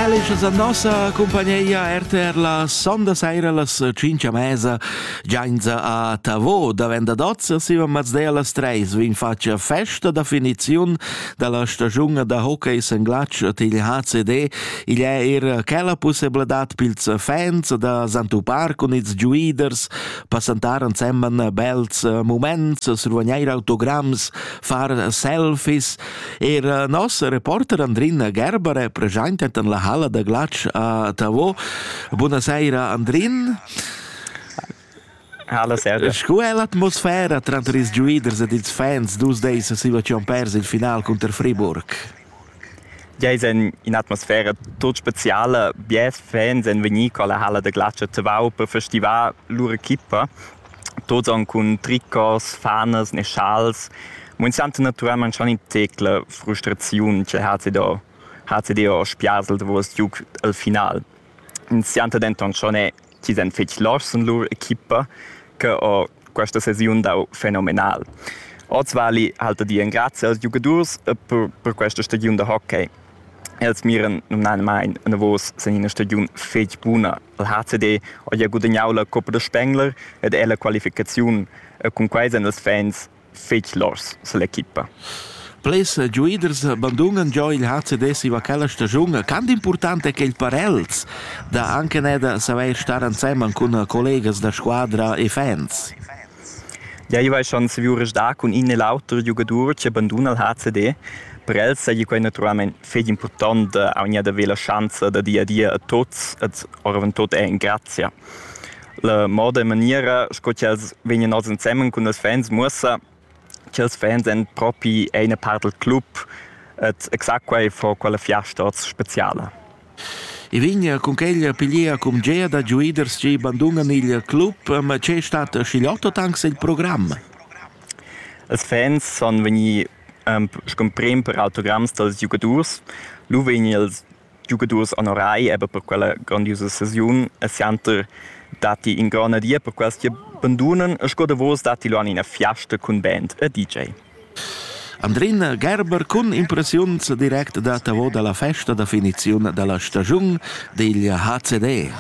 Felice a nossa compagnia RTR la sonda saira las 5 a mesa gianza a Tavo davent da Dozza Sivan Mazday las 3 vin faccia festa da finiziun dalla stagiun da hockey senglatsch til HCD igl è er quella possibilitad pils fans da Santupar cun ils giuiders passantar ensemen bels moments survagneir autograms far selfies Er eh, nos reporter Andrina Gerbere presentet en la halla da glatsch a Tavo. Buonasera Andrin. Hallo, servus. Sco è l'atmosfera tranter ils giuiders ed ils fans dus days a situazion pers il final contro Friburg? Ja ist in, in atmosfera tot speziale. Bies Fans sind venuti alla halla de Glatsch a Tavau per festivar loro equipa tots han cun tricos, fanas ne schals. Mo ins senta naturalmaing schon in tecla frustraziun che ha do ha do spiasel davos giug al final. Ins senta denton schon eh, chi san fetg loschs en lur equipa che ho questa sesiun dau fenomenal. Oz vali halta di en grazie als giugadurs e per, per questa stagiun da hockey. Els miran numnadamain enavos sin ina stagiun fetg buna. Il HCD ha gia gudagnau la Coppa da Spengler ed è la qualificaziun e cunquei san ils fans fetg lors sill'equipa. Blers giuaders bandunan già il HCD siva quella stagiun. Quant important è quel per els da anche da saver star ensemen cun collegas da squadra e fans? Giaiva eschan saviu resdar cun in e l'auter giugadur che banduna il HCD. Per els seigi quei naturalmein fetg impurtont da aunc haver la schanza da dir adia a tuts ed oravantut er in grazia. La moda e maniera sco ch'els vegnan oz ensemen cun ils fans muossa ch'ils fans ein propi eine part dal club ed exact quei fa quella fiasta oz speciala. I vegna cun quella pigliea cumgea da giuiders chi bandunan il club, ma che stat schigliotta tank sel program? Ils fans sun vegni scumprem per autogramms dals giugadurs. Lu vegni ils giugadurs onorai eben per quella grandiusa sesiun e sianter datti in grona dia per quels chi bandunan e sco davos datti lu an ina fiasta cun band e DJ. Andrina Gerber cun impressiuns direct datavo dalla festa da finiziun dalla stagiun digl HCD.